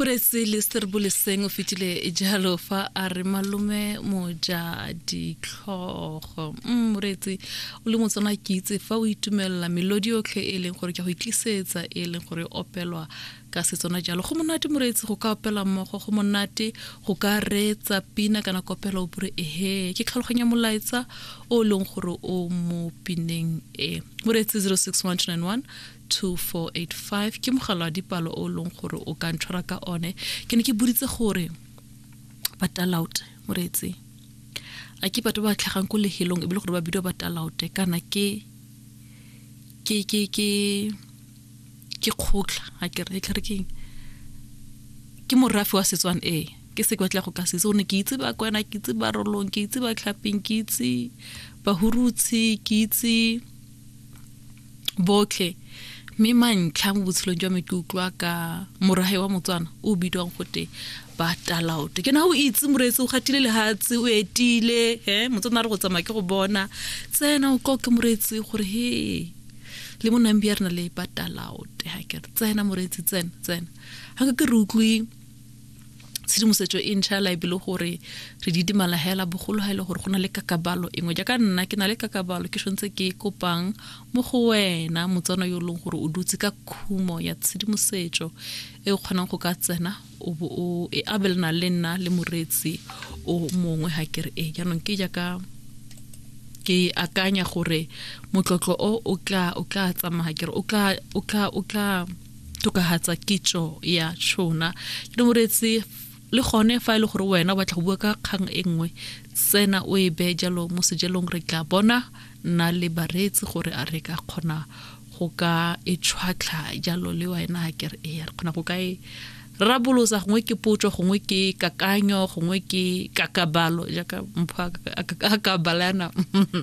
Poraise le Serboleseng o fetile jalo fa a re malome moja ditlhogo mm, moreetsi o le motswana ke itse fa o itumelela melodi yotlhe e leng gore ke go itlisetsa e leng gore e opelwa ka setswana jalo go monate moreetsi go ka opela mmogo go monate go ka reetsa pina kana kopela o bure ehe ke tlhaloganya molaetsa o e leng gore o mo pineng e moreetsi 061 291 2485 ke mogala wa dipalo o leng gore o ka ntshwara ka one ke ne ke boditse gore batalaute moreetsi a ke batho ba tlhagang ko lehelong e bile gore ba bidiwa batalaute kana ke ke ke ke ke kgotla a ke re tlhare keng ke morafe wa setswana ee ke se ke batla go ka setse o ne ke itse ba kwena ke itse ba rolong ke itse ba tlhapeng ke itse bahurutshi ke itse botlhe mme mantlha mo botshelong jwa me ke utlwa ka morage wa motswana o bidiwang gote ba talaote ke na o itse moreetsi o gatile lehatshe o etile e motswana a re go tsamaya ke go bona tsena o tlo ke moreetsi gore he le mo nambi ya rena le ba talaote ga kere tsena moreetsi tsena tsena ga ke re utlwe tshedimosetso e ntšha la ebile gore re di dimala hela bogolo ga e le gore go na le kakabalo engwe jaaka nna ke na le kakabalo ke tshwanetse ke e kopang mo go wena motswana yo e leng gore o dutse ka khumo ya tshedimosetso e o kgonang go ka tsena o bo o e abelana le nna le moreetsi o mongwe ga kere e jaanong ke jaaka ke akanya gore motlotlo o o tla o tla tsamaya kere o tla o tla o tla tokahatsa kitso ya tšhona ke ne moretse le gone fa e le gore wena o batla go bua ka kgang e nngwe tsena o e bee jalo mo sejelong re tla bona nna le bareetsi gore a re ka kgona go ka e tshwatlha jalo le wena ke re ee re kgona go ka e rabolosa gongwe ke potso gongwe ke kakanyo gongwe ke kakabalo jaaka mpho a kakabala yana